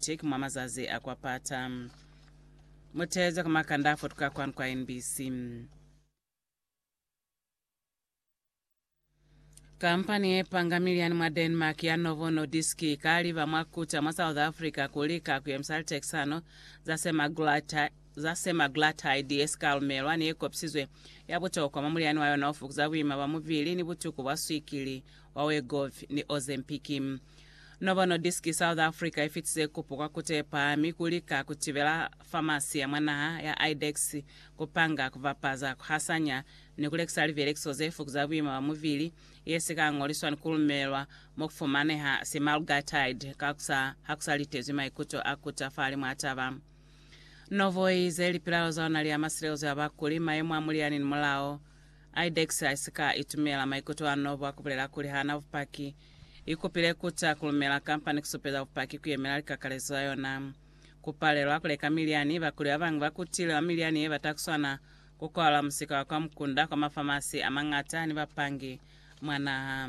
Teki mwa mazazi a kwa pata. Mutezo ka makanda a fotuka kwanu kwa NBC. Kampani ye panga miliani mwa Denmark ya Novo Nordisk ikaliba mwa kuta mwa South Africa kuli ka kuyemisa litekisano za semaglutide za semaglutide ye sikaalumelwa ni ye kopisizwe ya butokwa mwa muliani wa yona o fukuza buima bwa mubili ni butuku bwa swikili wa Wegovy ni Ozempic. Novo Nordisk South Africa ifitize kupo kwa kutepa mi kulika kutibela famasi ya mwa naha ya IDEX kupanga, kubapaza, kuhasanya ni kulekisa libelekiso ze fukuza buima bwa mubili, yesika ngoliswa ni kulumelwa mo kufumaneha semaglutide kakusa hakusa litezwi maikuto a kuta fahali mwa taba. Novo iize lipilalo za ona li ama silezo ya bakuli, mayemo a muliani ni mulao. IDEX haisika itumela maikuto a Novo a kubulela kuli haana bupaki ikupile kuta kulumela kamba ni kusupeza bupaki kuyemela likakalezo za yona. Kupalelwa kuleka milyani, bakuli babañwi bakutile mwa milyani yebata kuswana kukwalwa musika wa kwa mukunda kwa mafamasi amañata ni bapangi mwa naha.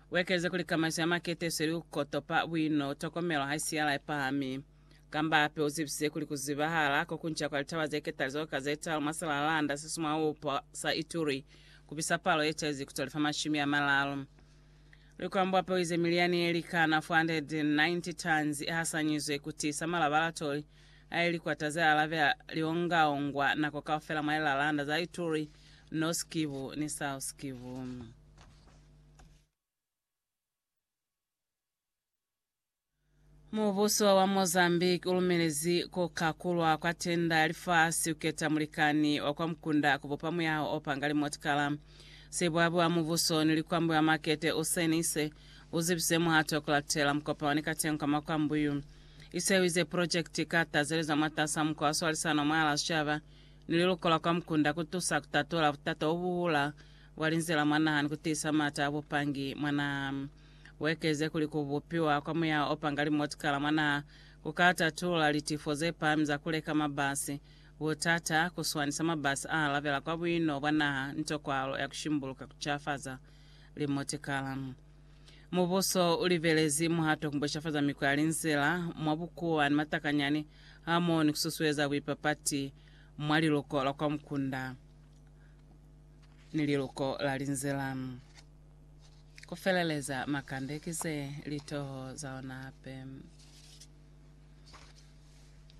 Uekeze kuli kamaiso ya makete isweli ku kotopa buino, tokomelo ha isi yala ipahami. Kamba hape uzibise kuli kuzibahala kokunca kwa litaba ze ketalizo ka ze talu mwa Salalanda se sumwaupa sa Ituri kubisa palo ye caizi ku tolifa mashumi amalalu. Likwambo hape uize miliani ye likana 490 tons ihasanyizwe ku tiisa malabalatoli a ye likwata ze alabela liongaongwa nako kaufela mwa lilalanda za Ituri, North Kivu ni South Kivu. Mubuso wa Mozambique ulumelezi kukakulwa kwa tenda ya lifasi kuketa mulikani wa kwa mukunda kubupa muyaho opanga limotikala. Sibwabi wa mubuso ni likwambi wa makete Usain Ise uzibisize muhato kulatela mukopano ni katengo ka makwambi yu. Ise uize project ika tazeleza mwatasa mukwa wa swalisano mwahala sicaba ni liluko la kwa mukunda kutusa kutatola butata ubuhula wa linzila mwa naha ni ku tiisa maata a bupangi mwa naha. U ekeze kuli ku bupiwa kwa muya o panga limotikala mwa naha ku ka tatula litifo ze pahami za ku leka mabasi, butata, ku swanisa mabasi a alabela kwa buino bwa naha ni tokwalo ya ku shimbuluka ku cafaza limotikala. Mubuso u libelezi muhato ku beshafaza mikwa ya linzila mwa bukuwa ni matakanyani hamoho ni ku susueza buipapati mwa liluko lwa kwa mukunda. ni liluko la linzila. Ku feleleza makande ki ze li toho za ona hape.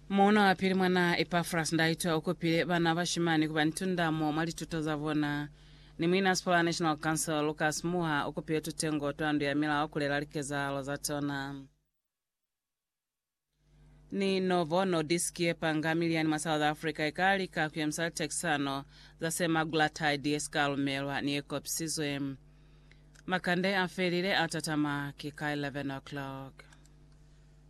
Muuna wa pili mwa naa Epafras Ndaitwa u kupile bana bashimani ku ba ni tundamo mwa lituto za bona, ni muin'a Sipora National Council Lucas Muha u kupile tutengo twa Ndu ya Milao ku lela likezahalo za tona. ni Novo Nordisk ye panga miliani mwa South Africa ika lika ku yemisa litehekisano za semaglutide ye sika lumelwa ni ye kopisizwe. Makande a felile a tatama ki ka 11 o'clock.